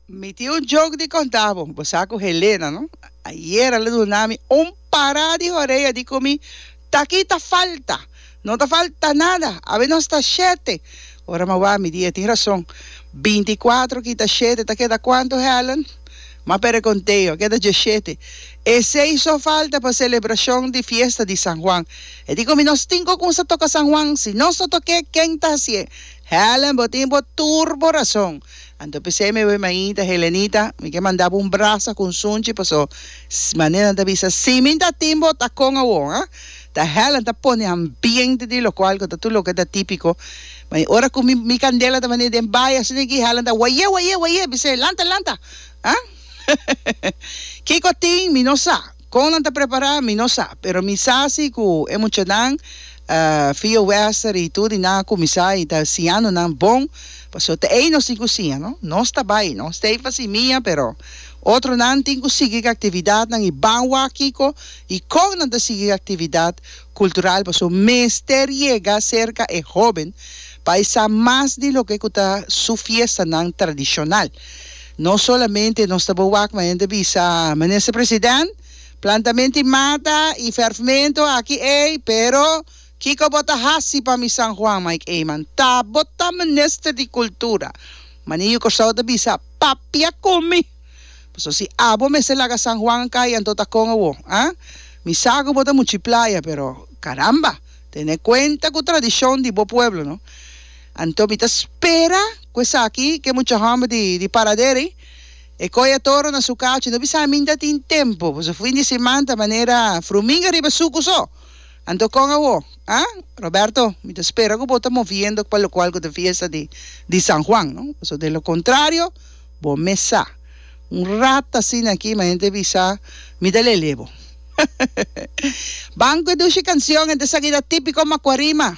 Mi tin un joke di conta bo. Bo sa cu Helena, no? Ayer a lo duna mi un pará di horea di cu mi taki ta falta. No ta falta nada. Awe nos ta shete. Ora mi a wak mi di e tin razón. Binti i kuater kita shete ta keda cuantu, Helen? Ma pere conteo, a keda dieshete. E seis so falta pa celebracion di fiesta di San Juan. E di cu mi nos tin cu cunsa toca San Juan. Si nos no toke, ken ta haci'e? Helen, bo tin bo tur bo rason. Anto p'esei mi bai mainta, Helenita, mi ke manda bo un brasa ku un sunchi paso s manera nan ta bisa si mi ta tin bo ta kon awor, ha? Ta Helen ta pone hambiente di lokual ku ta tur loke ta tipiko, ma e ora ku mi mi kandela ta bani den bai asina aki Helen ta wayé wayé wayé bis'é lanta lanta, ha? Kiko tin mi no sa. Kon nan ta prepará, mi no sa, pero mi sa si ku e muchanan, Fio Wester i tur di nan a kuminsá i ta siñando nan bon, pasobra ta ei nos tin ku siña, no? Nos ta bai, no stay pa si mia, pero otronan tin ku sigui ku e aktividatnan i ban wak kiko i kon nan ta sigui ku e aktividat kultural, pasobra mester yega serka e hóben pa e sa mas di loke ku ta su fiestanan tradishonal. No solamente nos ta bo wak, ma hende bisa, Minister President, plantamenti mata y ferfmento aki ey, pero kico bo ta haci pa mi San Juan? Mike Eman, Ta bo ta Minister di Cultura, ma Niño Corsou ta bisa, Papia cu mi! Paso si abo mester laga San Juan cay, anto ta con awo, ha? Mi sa cu bo ta muchi playa, pero caramba, tene cuenta cu tradicion di bo pueblo, no? Anto mi ta spera cu esaki, cu e mucha homber di, di Paraderi, e coy e toro na su cachi, no bisa aminta tin tempo, boso fin di siman ta manera fruminga riba sucu so, anto con awo, ah? Roberto, mi ta spera cu bo ta moviendo pa locual cu ta fiesta di, di San Juan, no? Boso de lo contrario, bo mes sa, un rat asina aki, ma henter bisa, mi ta lele bo. Banco e dushi cancion, henter sa cu ta tipico Macuarima.